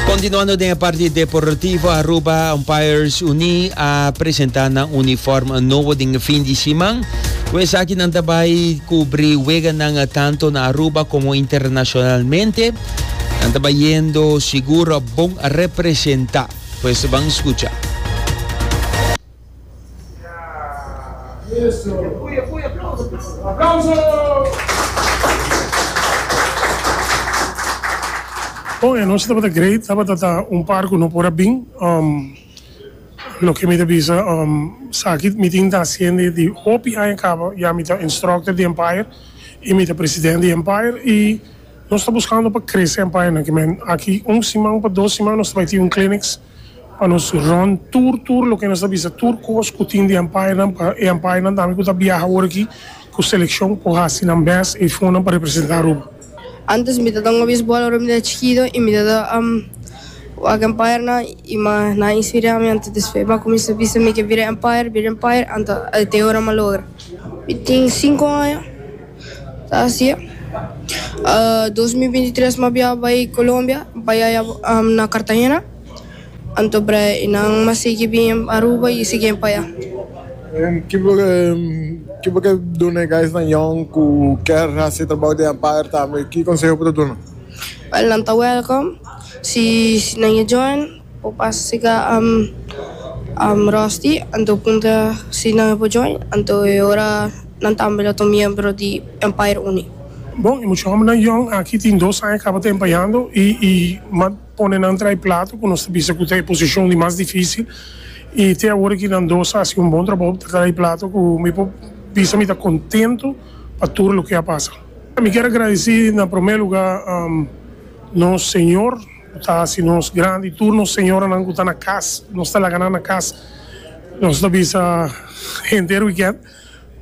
Continuando den e parti deportivo, Aruba Umpires Uni a presenta na uniform nobo den e fin di siman. Ku esaki nan ta bai kubri weganan tanto na Aruba komo internashonalmente. Nan ta bai yendo sigur bon representa. Pues ban skucha. Oh e anochi tabata great tabata ta un par cu no por a bin um loke mi ta bisa um saki mi tin ta hacende di hopi aña caba ya mi ta instructor di Empire y mi ta president di Empire y nos ta buscando pa crece Empire nan kimen aki un siman pa dos siman nos ta bay tin un clinics. pa nos rond tur tur loke nos ta bisa tur cos cu tin di umpire nan pa e umpire nan tambe cu ta biaha ora aki cu seleccion por haci nan best e fonan pa representa Aruba. Antes mi ta tanga baseball ora mi ta chikito y mi ta ta wak umpire nan y ma nan a inspira mi anto despues mi a cuminsa bisa mi ke bira umpire bira umpire anto te ora mi a logra. Mi tin cinco aña. ta hasié. Dos mil binti tres mi a biaha bai Colombia, pa yaya na Cartagena, anto bre i nan mi a sigui bin Aruba i sigui pa ya. Ki bo ta duna e guysnan yòn ku kier hasi e trabou den Empire tambe? Ki konseho bo ta duna? Nan ta welcome si nan e join. Bo pas siga Rusty anto punta si nan e por join anto e ora nan tambe lo ta un miembro di Empire Unie. Bon y mucha hombernan yong aki tin dos aña caba ta empayando y y m'a pone nan trae plato cu nos ta bisa cu ta e posicion di mas dificil y te awor aki nan dos a haci un bon trabao pa trae plato cu mi por bisa mi ta contento pa tur loke a pasa. Mi kier agradeci na prome lugar nos Señor. Ta hasi nos grandi tur nos señoranan ku ta na kas, nos ta laga nan na kas, nos ta bisa henter wikènt,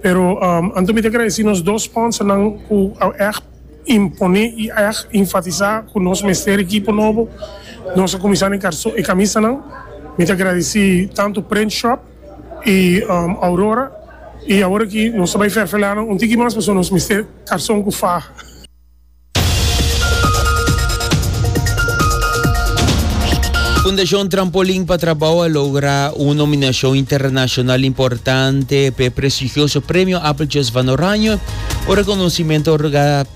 pero anto mi ta agradesí nos dos spònsernan ku a ègt imponé i ègt infatisá ku nos mester e ekipo nobo, nos a kuminsá na e kamisanan, mi ta agradesí tantu Print Shop i Aurora, i awor aki nos ta bai ferfelá nan un tiki mas pasobra nos mester karson ku faha. Fundashon Trampolin pa Trabou a logra un nominashon internashonal importante p'e prestigioso Premio Appeltjes van Oranje, un rekonosimentu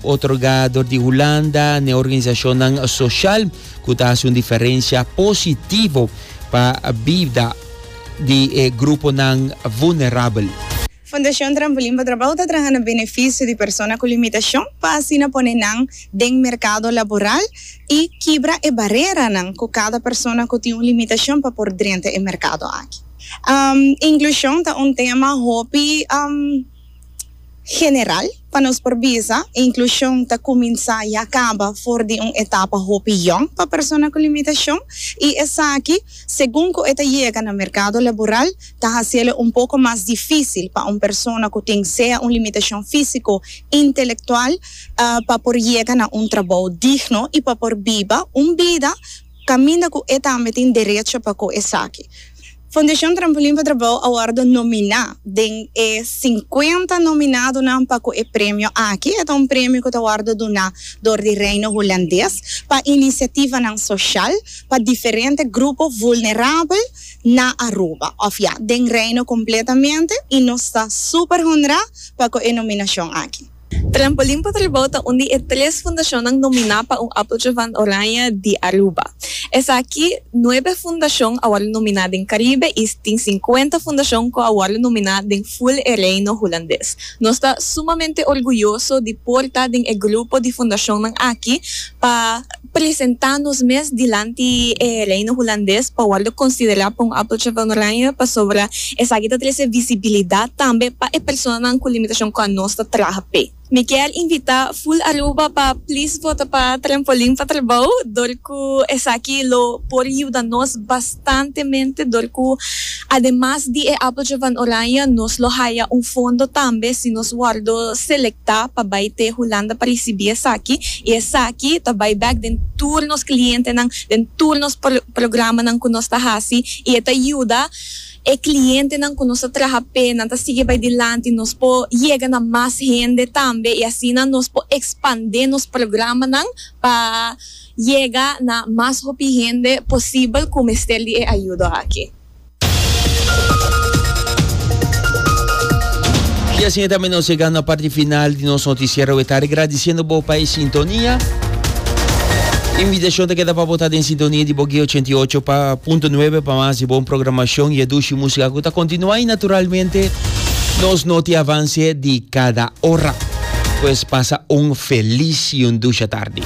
otorgá dor di Hulanda n'e organisashonnan soshal ku ta hasi un diferensha positivo pa bida di e gruponan vulnerabel. Fundashon Trampolin pa Trabou ta traha na benefisio di persona ku limitashon pa asina pone nan den merkado laboral i kibra e bareranan ku kada persona ku tin un limitashon pa por drenta e merkado aki. Inklushon ta un tema hopi general. Pa nos por bisa, e inklushon ta kuminsá ya kaba for di un etapa hopi yòn pa persona ku limitashon, i esaki, segun ku e ta yega na merkado laboral, ta hasiélo un poko mas difísil pa un persona ku tin sea un limitashon físiko, intelektual, pa por yega na un trabou digno i pa por biba un bida Caminda cu e tambe tin derecho pa cu esaki. Fundacion Trampolin pa Trabao a wordo nomina den e cincuenta nominadonan pa cu e premio aki, e ta un premio cu ta wordo duna door di Reino Hulandes pa iniciativanan social pa diferente grupo vulnerabel na Aruba, of ya, den Reino completamente y nos ta super honra pa cu e nominacion aki. Trampolin pa Tribou ta un di e tres fundashonnan nominá pa un Appeltje van Oranje di Aruba. Esaki nuebe fundashon a wòrdu nominá den Karibe i tin sinkuenta fundashon ku a wòrdu nominá den ful e Reino Hulandes. Nos ta sumamente orguyoso di por ta den e grupo di fundashonnan aki pa. presentá nos mes dilanti e Reino Hulandes pa wòrdu konsiderá pa un Appeltje van Oranje pasobra esaki ta trese visibilidat tambe pa e personanan ku limitashon ku anos ta traha p'e. Mi kier invitá Full Aruba pa plis vota pa Trampolin pa Trabou dor ku esaki lo por yuda nos bastantemente dor ku Ademas di e Apeltje van Oranje nos lo haya un fondo tambe si nos wòrdu selektá pa bai te Hulanda pa risibí esaki i esaki ta bai bèk den tur nos klientenan, den tur nos programanan ku nos ta hasi i e ta yuda e klientenan ku nos ta traha p'e nan ta sigui bai dilanti, nos por yega na mas hende tambe i asina nos por ekspandé nos programanan pa. yega na mas hopi hende posibel ku mester di e ayudo aki. I asina tambe nos yegando na parti final di nos notisiero e tarde, gradisiendo bo pa e sintonia. Invitashon ta keda pa bo ta den sintonia di Bogué 88.9 pa mas di bon programashon i e dushi músika ku ta kontinuá i naturalmente nos noti avanse di kada ora. Pues pasa un felis i un dusha tardi.